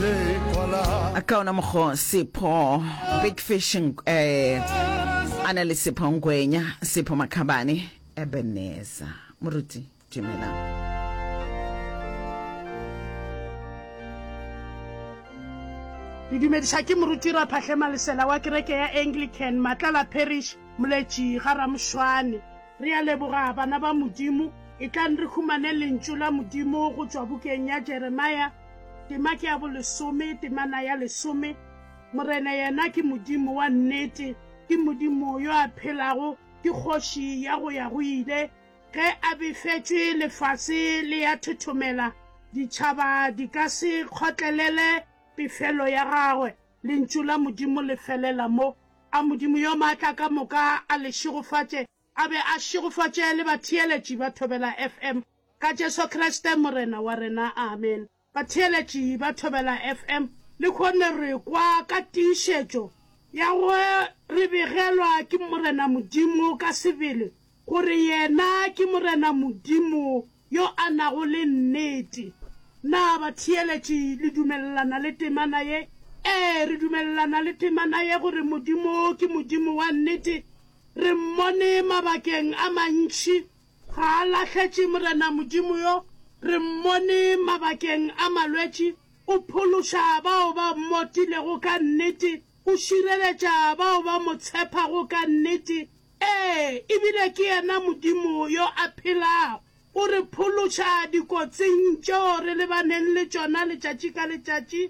a ka ona mokgo sepho big fish um a na le sepho ngwenya sepho makhabane ebeneza moruti dumelang ke dumediša ke moruti raphatlhe malesela wa kereke ya anglican matlala parish moletši ga ramošwane re a leboga bana ba modimo e tlang re humane lentšu la modimo go tšwa bukeng ya jeremia Tema ke ya bolesome, temana ya lesome. Morena yena ke Modimo wa nnete, ke Modimo yo a phelago, ke kgoši ya go ya go ile. Ge a befetšwe, lefase le ya thothomela, ditšhaba di ka se kgotlelele pefelo ya gagwe. Lentšu la Modimo le felela mo. A Modimo yo maatla ka moka a le šegofatše, A be a šegofatše le batheeletši ba Thobela FM. Ka Jesu Kriste Morena wa rena, amen. Batheeletši ba Thobela FM, le kgone re kwa ka tiišetšo ya go re begelwa ke Morena Modimo ka sebele, gore Yena ke Morena Modimo yo a nago le nnete. Na batheeletši le dumelelana le temana ye? Ee, re dumelelana le temana ye gore Modimo ke Modimo wa nnete. Re mmone mabakeng a mantši. Ga a lahletše Morena Modimo yo. Re mmone mabakeng a malwetši. O phološa bao ba mmotilego ka nnete. O šireletša bao ba mo tshepago ka nnete, ee, e bile ke yena Modimo yo a phelago. O re phološa dikotsing tšeo re lebaneng le tšona letšatši ka letšatši.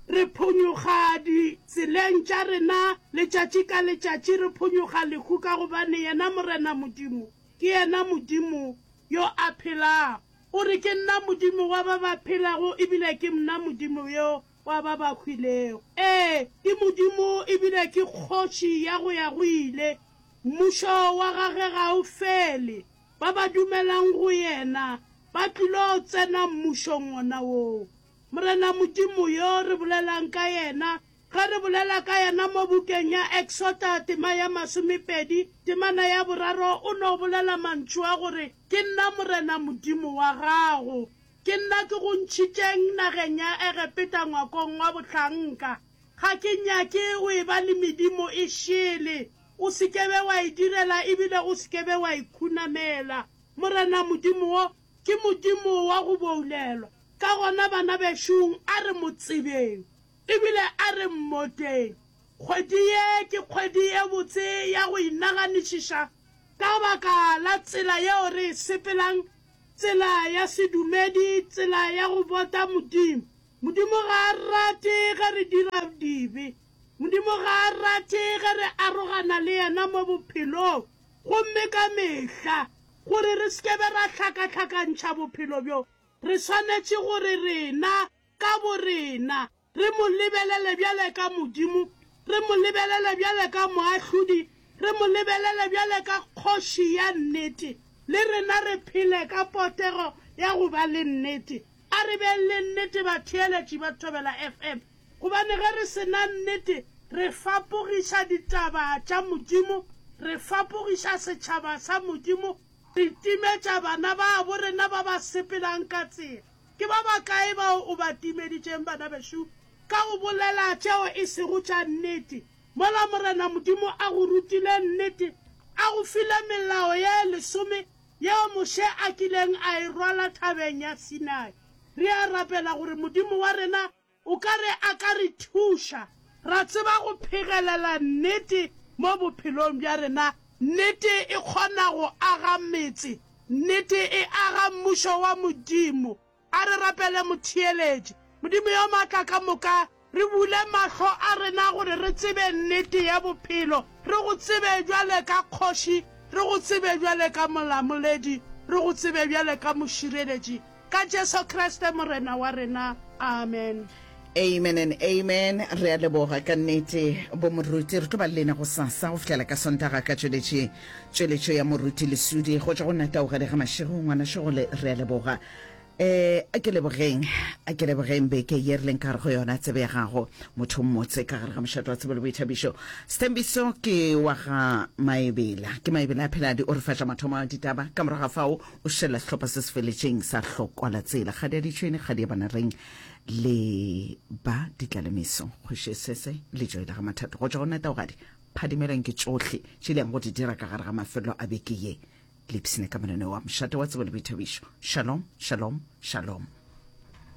Re phonyoga ditseleng tša rena letšatši ka letšatši, re phonyoga lehu ka gobane yena Morena Modimo ke yena Modimo yo a phelago. O re, Ke nna Modimo wa ba ba phelago e bile ke mna Modimo yo wa ba ba hwilego. Ee, ke Modimo e bile ke Kgoši ya go ya go ile. Mmušo wa gagwe ga o fele. Ba ba dumelang go yena ba tlilo tsena Mmušong wona woo. Morena Modimo yo re bolelang ka yena, ge re bolela ka yena mo bukeng ya Exota tema ya masomepedi, temana ya boraro, o no bolela mantšu a gore, Ke nna Morena Modimo wa gago. Ke nna ke go ntšhitšeng nageng ya Egepeta ngwakong wa bohlanka. Ga ke nyake go e ba le medimo e šele. O se ke be wa e direla e bile o se ke be wa e khunamela. Morena Modimo wo ke Modimo wa go boulelwa. Ka gona bana bešong a re mo tsebeng e bile a re mmoteng. Kgwedi ye ke kgwedi e botse ya go inaganišiša ka baka la tsela yeo re e sepelang Tsela ya sedumedi, tsela ya go bota Modimo. Modimo ga a rate ge re dira dibe. Modimo ga a rate ge re arogana le yena mo bophelong gomme ka mehla, gore re se ke be ra hlakahlakantšha bophelo bjo, re swanetše gore rena ka borena, Re mo lebelele bjale ka Modimo, re mo lebelele bjale ka Moahlodi, re mo lebelele bjale ka Kgoši ya nnete, le rena re phele ka potego ya go ba le nnete. A re beng le nnete batheeletši ba Thobela FM, gobane ge re se na nnete re fapogiša ditaba tša Modimo, re fapogiša setšhaba sa Modimo, re timetša bana babo rena ba ba sepelang ka tsela. Ke ba bakae bao o ba timeditšeng, bana bešo, ka go bolela tšeo e sego tša nnete, mola Morena Modimo a go rutile nnete, a go file melao ye lesome yeo Moshe a kileng a e rwala thabeng ya Sinai? Re a rapela gore Modimo wa rena O ka re a ka re thuša ra tseba go phegelela nnete mo bophelong bja rena. Nnete e kgona go aga metse. Nnete e aga Mmušo wa Modimo. A re rapele Motheeletši. Modimo yo Maatla ka moka, re bule mahlo a rena gore re tsebe nnete ya bophelo. Re Go tsebe bjale ka Kgoši. Re Go tsebe bjale ka Molamoledi. Re Go tsebe bjale ka Mošireletši. Ka Jesu Kriste Morena wa rena. Amen. Amen and amen. Re a leboga ka nnete bo moruti. Re tlo ba le lena go sasa go fihlela ka sontaga ka tšweletše tšweletšo ya moruti lesudi go tšwa go nna taogele ga mašego ngwana šegole re a leboga eh a ke lebogeng a ke lebogeng beke ye re leng ka gare go yona tsebe ya gago motho mmotse ka gare ga mošato wa tsebo le boithabišo setembiso ke wa ga maebela ke maebela a pheladi o re fatša mathomo a ditaba ka morago ga fao O šela sehlopha se se feletšeng sa hlokwala tsela. Kgadi ya ditšhwene, kgadi ya banareng le ba ditlalemeso. Kgoši sese le joe la ga mathato. Go tšwa go neta ogadi, phadimelweng ke tšohle tše di yang go di dira ka gare ga mafelelo a beke ye. Lipsine ka mananeo a mošate wa tsebo le boithabišo. Shalom, shalom, shalom.